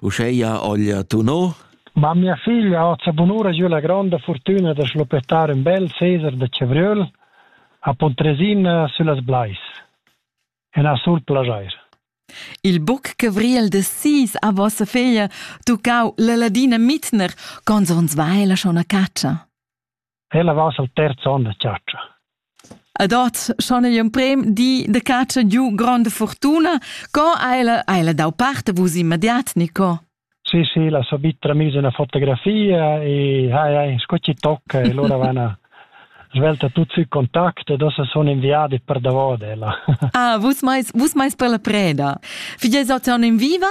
Uscheia Olja Tuno. Ma mia figlia ha la bunura giù la grande fortuna da schlopettare un bel Cesar de Cebriol a Pontresina sulla Blais en a sul plajair. Il buc cavriel de sis a vossa figlia tuccau la ladina Mitner, cons ons vai la schon a caccia? Ella va al terz onn da chatscha. Ed ot, schon ei un prem di de caccia giu gronda fortuna. Co ha ella, ha ella dau parte vus immediat, Nico? Sì, sì, la so bitra misa una fotografia e hai, hai, sco ci tocca e loro vanno svelta tutti i contatti e dopo sono inviati per davvero ella. ah, vus mais, vus mais per la preda. Figlies otan in viva?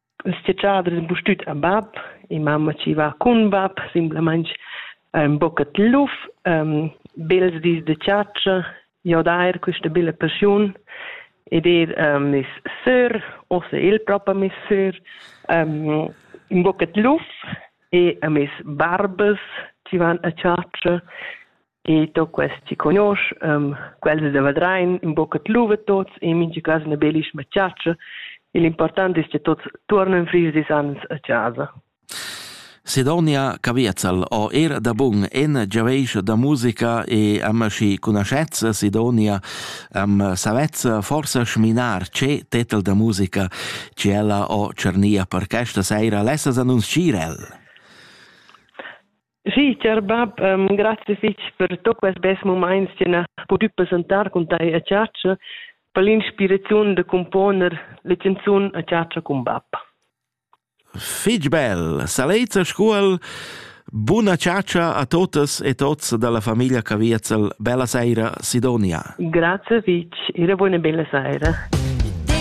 Il stgader impustüt a bap. In mamma chi va cun bap simplamaing ün bochet luf, bels dis da chatscha, jo d'eir quista bella paschiun ed eir mes sör, uossa el propa meis sör, ün bochet luf e a mes barbas chi van a chatscha E to quest chi conosch, quels da Vadrein, in boca tluva tots e mincha cas üna belisch machatscha. E l'important es cha tots tuornan fris dis ans a chasa. Sidonia Caviezel ho eir da bun en giaveisch da musica e am schi conoschezza Sidonia am savezza forsa schminar che tetel da musica che ella ho tschernia per questa seira lessas annunzchir el. Sì, cher bab, um, grazie fitg per tot quest bes moments che na pudü presentar cun tai a chatscha, per l'inspiraziun da componer le canzun a chatscha cun bab. Fitg bel, salezza scuol, buna chatscha a totas e tots dalla famiglia Caviezel, bella saira Sidonia. Grazie fitg, e una buona bella saira.